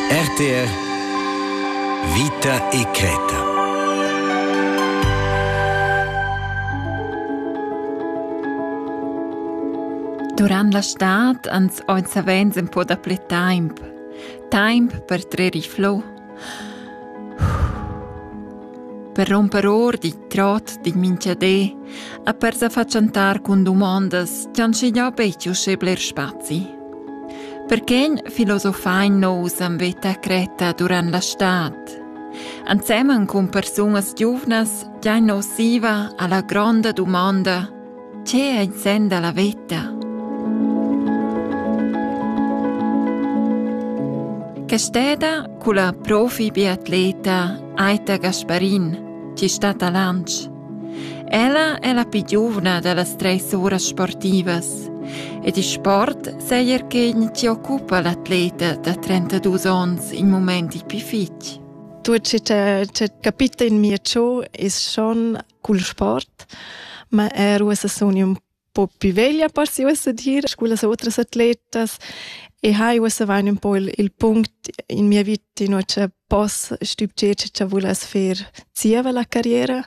RTR Vita e Creta Durant la stad ans oi savens in po da ple taimp. Taimp per trer i flow Per romper or dit trot din minchadé e per sa fatschentar cun dumondas ch'han schignà betg uschè bler spazi. Perquegn filosofain nous am veta cretta durant la stad. Ensemen cun persunas giuvnas giain nus siva a la gronda dumanda Tge ei il senn dalla veta? Quest'eda culla profi biatleta Aita Gasparin chi stat a Lantsch. Ella è la più giovane delle tre sore sportivas ed il sport sejer che ci occupa l'atleta da 32 onns in momenti più fitg. Tutto ciò che capita in mio ciò è schon cul sport, ma er uossa sun ün po più veglia per si uossa dir scu las otras atletas e hai uossa vain ün po il, il punct in mia vita in cha poss stübgier cha vuless fer zieva la carriera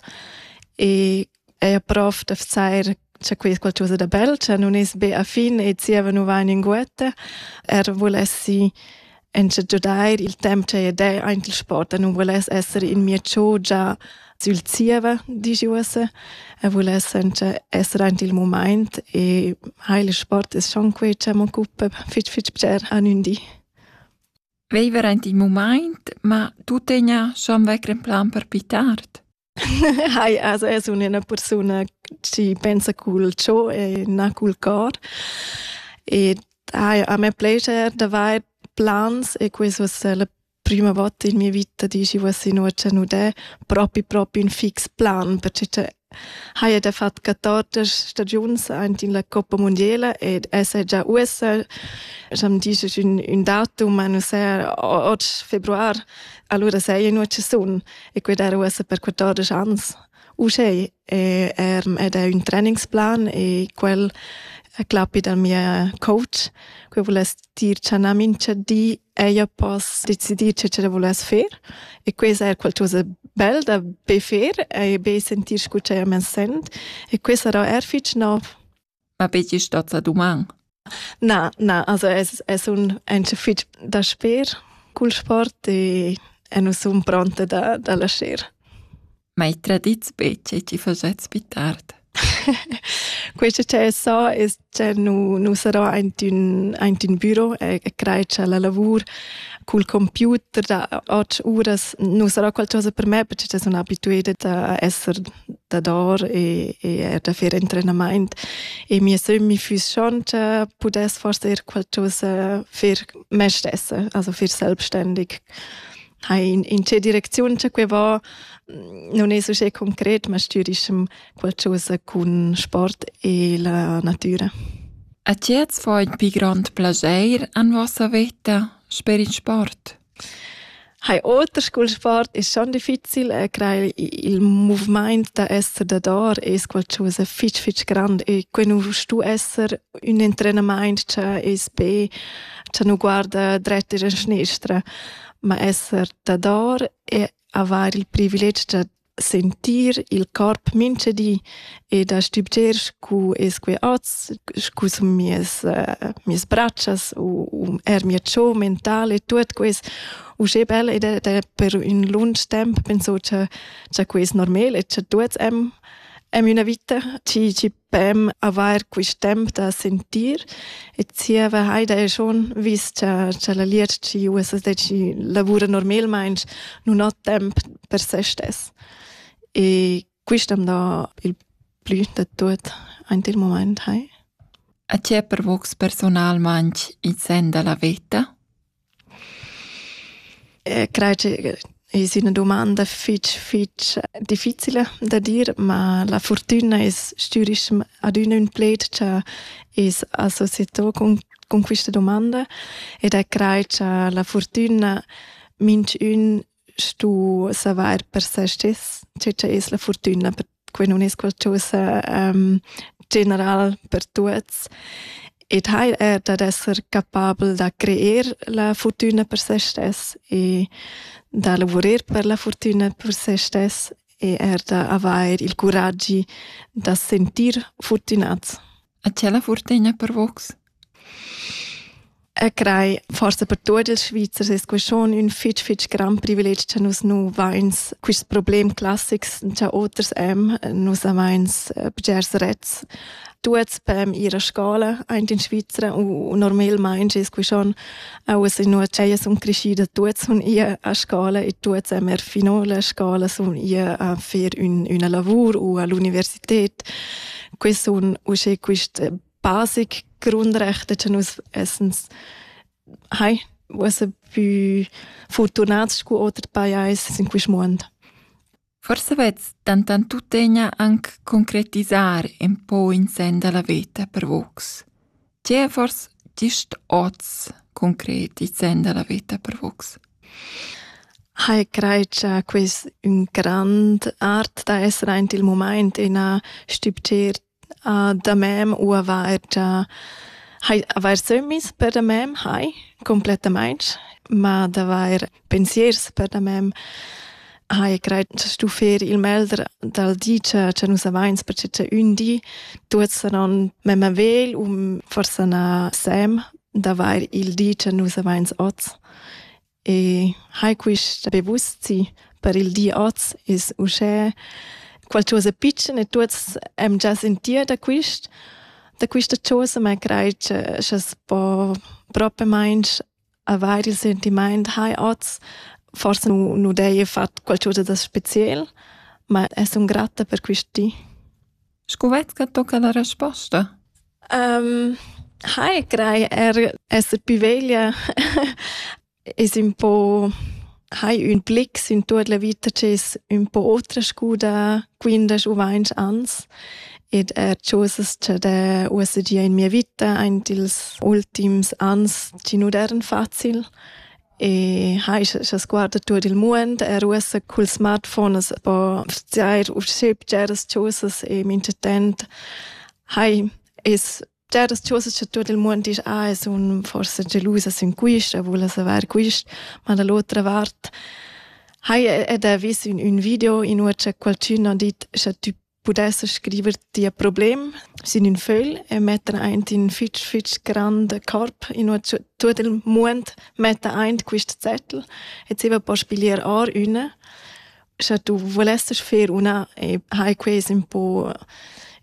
e eir prof da vezair C'è qui qualcosa da bel, cioè non es be a fin e zieva nu va in inguetta. Er volessi ins giudair il temp che ed è aint il sport e non voless essere in mia chogia sül zieva, dici uossa, e voless essere aint il moment e ha il sport es schon quei che m'occupa fitg fitg bger an ün di. Viver aint il moment, ma tu tegna schon vecr in plan per pitar? Hai, also es üna persuna chi pensa cul cho e na cul cor. Ed hai, a me plascher d'avair plans e questo es la prima volta in mia vita di chi voess innuochà nudè propi propi ün fix plan, perche cha haja da fat 14 stagiuns aint in la Coppa Mundiela ed esa già uossa, scha'm disch ün, ün datum, ma nu saja oggi februar, alura saja innuochà sun. E quei dar ussa per 14 ans. Uschè è, er, ed è un trainingsplan e quel è clappi dal mio coach che volesse dir che una mincha di ella possa decidir che ce volesse fare e questo è qualcosa bel da be fare e be sentir scu che ella mi sent e questo sarà er fitg nov. ma betg stat sa duman. Na, na, also es, es un encha fich da sper cul sport e, e nu sun pronta da, da lascher. Ma i tradits be che ti facets più tard? Questo che so è che nu, nu sarò aint ün, aint ün büro e, e crei che la lavur col computer da 8 uras nu sarà qualcosa per me perché sun abituata a esser dador e, e er da fer entrenamaint e mia sömmi füss schonta pudess forse er qualcosa fer me stessa, also fer selbstständig. Hai in, in tge direcziun che que va, non es uschè concret, ma stürischem qualcosa cun sport e la natura. A ti jetzt fo il più grande piacere en vostra vita per il sport. Hai oter cul sport es schon difficil e crei il muvimaint da esser dador es qualchosa fich fich grand e que nu stu esser ün entrenamaint cha es be cha nu guarda dret ir in schnestra, ma esser dador e avair il privilegi da sentir il corp mintgadi e da stübgier scu es que hoz, scu sun mieas uh, mieas bratschas u, u er mia cho mentala e tuot quist. Uschè bel ed è per ün lunsch temp penso cha cha que es normal e cha tuots am am üna vita, chi chi beim avair quist temp da sentir e zieva Heida e schon vis cha cha la Lietschi USSDC lavura normalmaing nun ho temp per se stess. E quist am dà il plü da tuot aint il mumaint, hai. A tie pervocs personalmaing in sen da la veta? Crei che es üna dumanda fich fich difficila da dir, ma la furtüna es stürischem adüna ün pled cha es associeto cun cun quista dumanda ed è crai cha la furtüna minchün stu savair per se stis, che che es la fortüna per que nun es qualchosa ehm general per tuots. Ed haja er dad esser capabel da creer la fortüna per se stess e da lavurer per la fortüna per se stess e er da avair il curagi da sentir fortünats. A ti la fortegna per vos? E crei, forse per tuot ils Svizzers es que schon ün fich fich grand privilegi cha nus nu vains quist problem classics cha oters am. Nus amains eh, bgers rets. Tuots pem ir a scola aint in Svizra u normalmaing es que schon auas inua ch'ellas sun creschüdas tuots sun ir a scola e tuots am er fino la scola sun ir a fer ün üna lavur u a l'università. dort. Que sun usche quist basic Grundrechte che nus essens hai was a più fortunați cu otri pajais in quest moment. Forse vez tantan tuttegna anc concretizar en po in sen da la veta per vox. Dievers disch hoz concret il sen da la veta per vus? Hai crei cha quist ün grand art da esser aint il mumaint ina stübgier a da mem u avair già hai avair sömmis per da mem hai complettamaing, ma d'avair pensiers per da mem hai grad stu fer il melder dal di cha cha nus avains per che ün di tuot saran memma vegl u forsa na sem d'avair il di cha nus avains hoz. E hai quist be buzi per il di hoz es uschè qualchosa pitschen e tuots am già sentir da quist da quista chosa, ma craj cha cha's po propamaing Avair il sentimaint hai hoz, forsa nu, nu d'heja fat qualchöda da speciel, ma es sun gratta per quist di. Scu vai's cha tocca la resposta? Um, hai craj er esser pi veglia es ün po hai ün blick sin tuot la vita chi es ün po otra scu da quindesch u vainch ans ed er chosas cha d'he uossa gia in mia vita aint ils ultims ans chi nu d'eiran facil e hai scha sguardo tuot il muond er uossa cul smartphone as po vzair usché bgeras chosas e minchatant hai es Già das choses cha tuot il muond disch ah, sun forsa gelusas in quist, e vulas avair quist, ma da l'otra vart haja ed ha vis ün, ün video in ua cha qualchün ha dit cha tü pudesses scriver tia problem sin ün fögl e metter aint in fitch fitch grand corp in ua tuot il muond metta aint quist zettel e zieva po spiglier or üna sche tu vulesses fer una e hai ques un po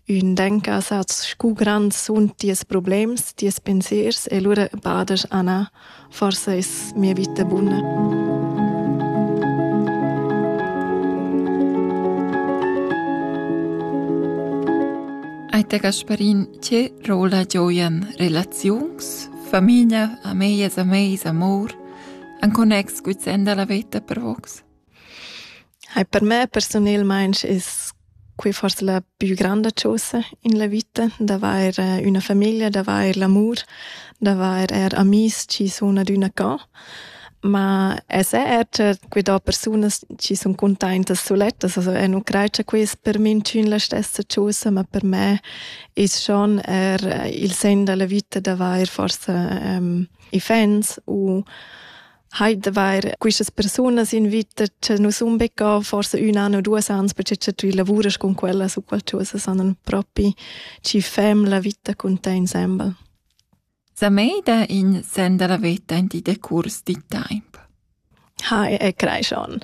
un denka saz scu grand sun ties problems, ties pensiers e lura badas Anna, forse es mia vita buna. Aita Gasparin, che rola gioian relaziuns, famiglia, amejas, ameis, amor, an connex guizenda la veta per vox? Ei per me persunelmeins es quei forsa la più granda chosa in la vita, d'avair üna famiglia, d'avair l'amur, d'avair eir amis chi sun adüna ca. Ma es eir cha que do persunas chi sun cuntaintas sulettas, also eu nu craj cha quai es per minchün la stessa chosa, ma per me es schon eir il sen da la vita d'avair forsa i fans u Heute wäre quistas persunas invita che nus unbecca forse un an o duas ans perché che tu lavuras con quella su qualcosa sanan propi ci fem la vita con te insemble. Sa mei da in senda la veta in di decurs di temp. Ha e crei schon.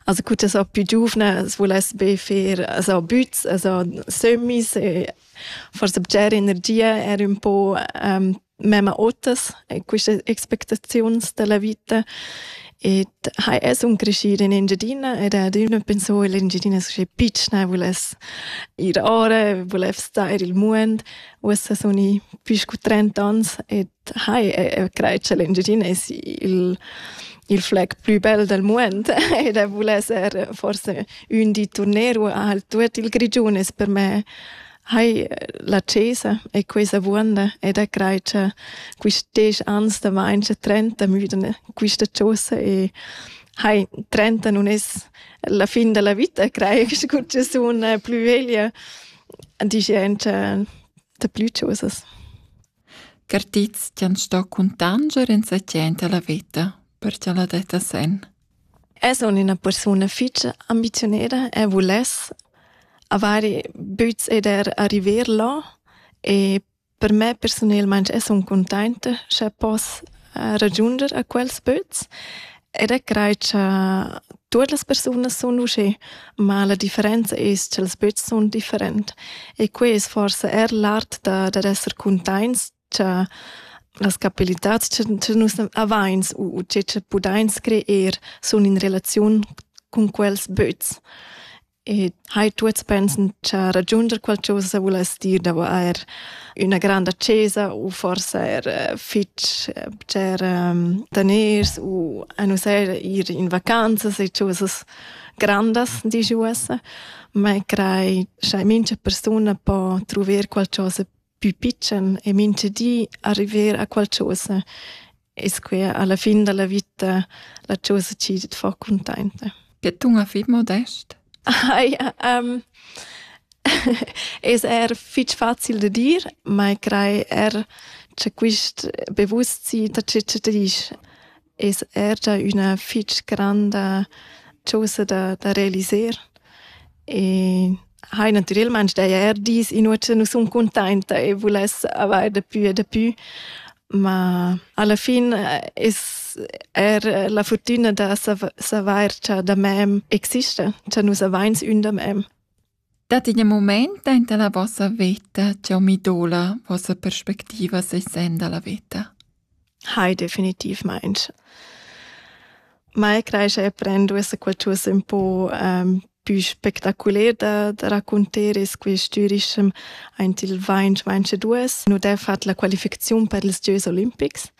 Also gut so più giovane es voless be fer so büts, also semis e forse bger energia er un po um, memma otas, quistas expectaziuns da la vita. Et hai es un crescir in Engiadina ed adüna penso in l'Engiadina sche pitschna vuless ir ora, vuless star il muond. Uossa sun i pü scu trenta ans ed hai craj cha l'Engiadina es il il flag plü bel dal muond ed vuless er forse ün di turneru al tuot il Grigiun es per me Hai, la cesa è questa vuonda ed è crai cha quist desch ans da main cha trenta müdan quista chosa e hai, trenta nun es la fin da la vita, crai che culla sun plü veglia, dischan cha da plü chosas. Cartits ti han sto cuntanger in sa tschenta la vita, per cha la detta sen. Eu sun üna persuna fich ambiziuneda e vuless avair büts ed eir arriver là e per me persunelmaing e sun cuntainta scha poss ragiunder a quels böts ed eu craj cha tuot las persunas sun uschè, ma la differenza es cha'ls böts sun different e quai es forsa eir l'art da d'esser cuntaints cha las capabilitats cha nus avains u che cha pudains creer sun in relaziun cun quels böts. E hai tuots pensan cha ragiunder qualchosa vuless dir davo eir üna granda chesa u forsa eir eh, fich eh, bger ehm, daners u a nus eir ir in vacanzas e chosas grandas, disch uossa, ma crai cha mincha persuna po truver qualchosa pü pitschen e mincha di arriver a qualchosa. E squia alla fin dalla vita la chosa chi tet fa cuntainta. Che tun a fit modest? ja, um, es er fich facil da dir, ma crai er cha quist bewusstsein da che che disch. es er gia üna fich granda chosa da, da realiser e hai natüralmaing daja er dis inua cha nu sun cuntainta e vuless avair dapü e dapü, ma alla fin eh, es er la furtüna da savair cha da mem exista, cha nus avains ün da mem. Dat in mumaint aint la vossa veta ch'eu mi doula vossa perspectiva sesenda la veta? Hai, definitivmaing. Mai creischa e prend duessa qualchosa ün po ehm, pü spectaculer da, da raccunter e squestürischem aint il vainch vainch e duos. Nu d'he fat la qualificaziun per ils gieus olimpics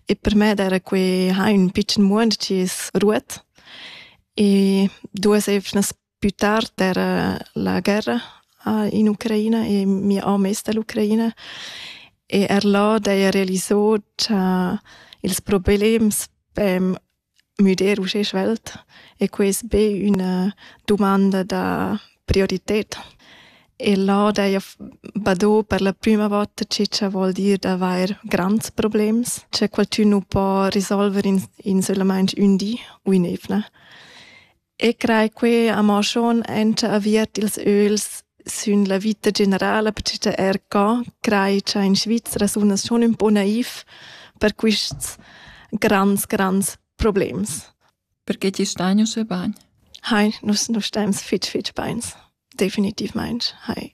e per me d'era que ha ün pitschen muond chi es ruot e duos eivnas Più tard era la guerra in Ucraina e mia om es da l'Ucraina e er là d'haja realisò cha ils problems pem müder uschè svelt e que es be üna dumanda da priorited. E là d'haja badò per la prüma vota che cha vuol dir d'avair grands problems, cha qualchün nu po risolver in insolamaing ün di u ün'eivna. E crei quei amo schon enta aviert ils öls sün la vita generala, perche er co crei cha in Svizra sunas schon ün po naiv per quists grands, grands problems. Perché ti stai nus e bagn? Hai, nus, nus stems fitg, fitg beins. Definitivmaing hai.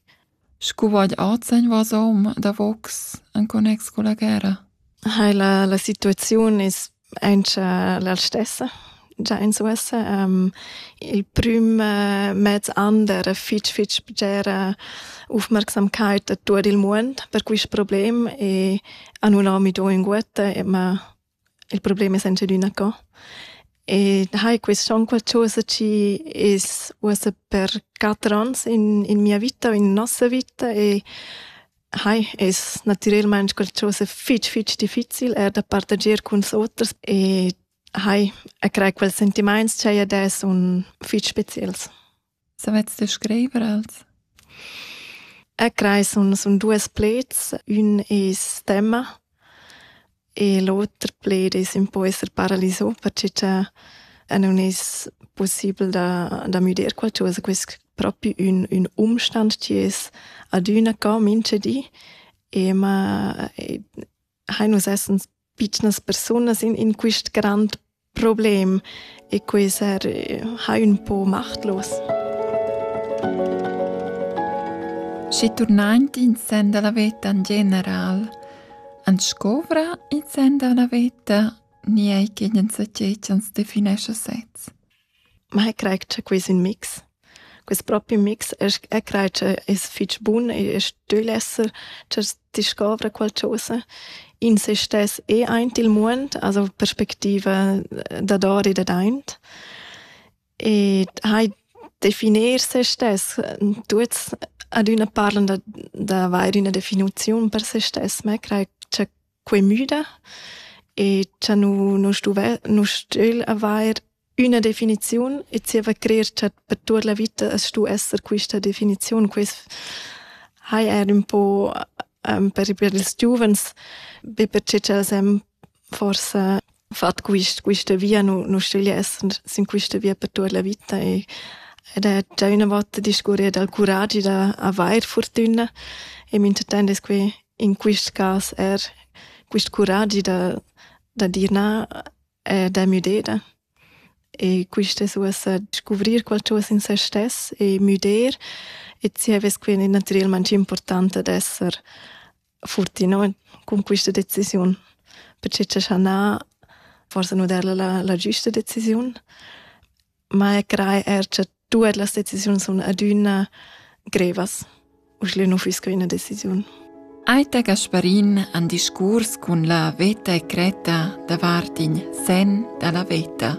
Scu vaid ozeñ vasom davocs in connex culla guerra? Hai la, la situaziun es auncha la stessa già in uossa. Um, il prüm uh, mez an d'eira fich fich bgera ufmarcsamkeit a tuot il muond per quist problem e a nun ho mi do ünguotta e ma Il problem es enzadüna co. E hai quist on qualchosa chi es uossa per quatter ons in, in mia vita o in nossa vita e hai es natürelmaing qualchosa fich fich difficil eir da partager culs oters e hai a crai quels sentimaints ch'haja adesso sun fich speciels. Savets ti scriver els? E crai sun, sun duos pleds. Ün es temma e l'oter pled es ün po esser paralisà perche cha nun es pussibel da da müder qualchosa. Quest propi ün ün umstand chi es adüna co minchedi e ma e hain nus essens pitschnas persunas in, in quist grand problem e quei ser eh, ha ün po machtlos. Schi turnaint in sen dalla veta in general, an scovra in sen dalla veta ni ei che ins definesce sez. Ma eg craj cha quist ün mix. Quist propi mix esch eg craj cha es fich bun e e stögl esser cha discovra qualchosa. In se stess e aint il muond, also perspectiva dador e dadaint. Ed hai definir se stess. Tuots ad üna parlan da d'avair üna definiziun per se stess, ma eg craj cha quei müda e cha nu nu stuve nu stügl avair üna definiziun e zieva crer cha per tuot la vita as stu esser quista definiziun. Quist hai eir ün po per per ils giuvens, be perche cha as hem forsa fat quist, quista via, nu, nu stöglia esser sin quista via per tuot la vita e ed è già üna volta discurrì dal curagi da avair furtüna e minchatant es que in quist cas eir quist curagi da, da dir na e da müdeda. E quist es uossa scuvrir qualchosa in se stess e müder e zievess quindi natüralmaing important ad esser futti no, cun questa decisiun. Perché c'è schanà forse nu der la, la giusta decisiun. Ma e crei er che tutte le decisioni sono adina grevas. Uschle nu fusco una decisione. Aita Gasparin han discurs con la veta e creta davart in sen dalla veta.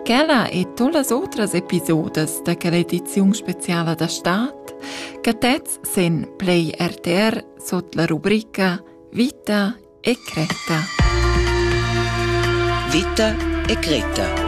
Quella e todas outras episodes da quella ediziun speciala da Staat che tez sin Play RTR sot la rubrica Vita e cretta. Vita e cretta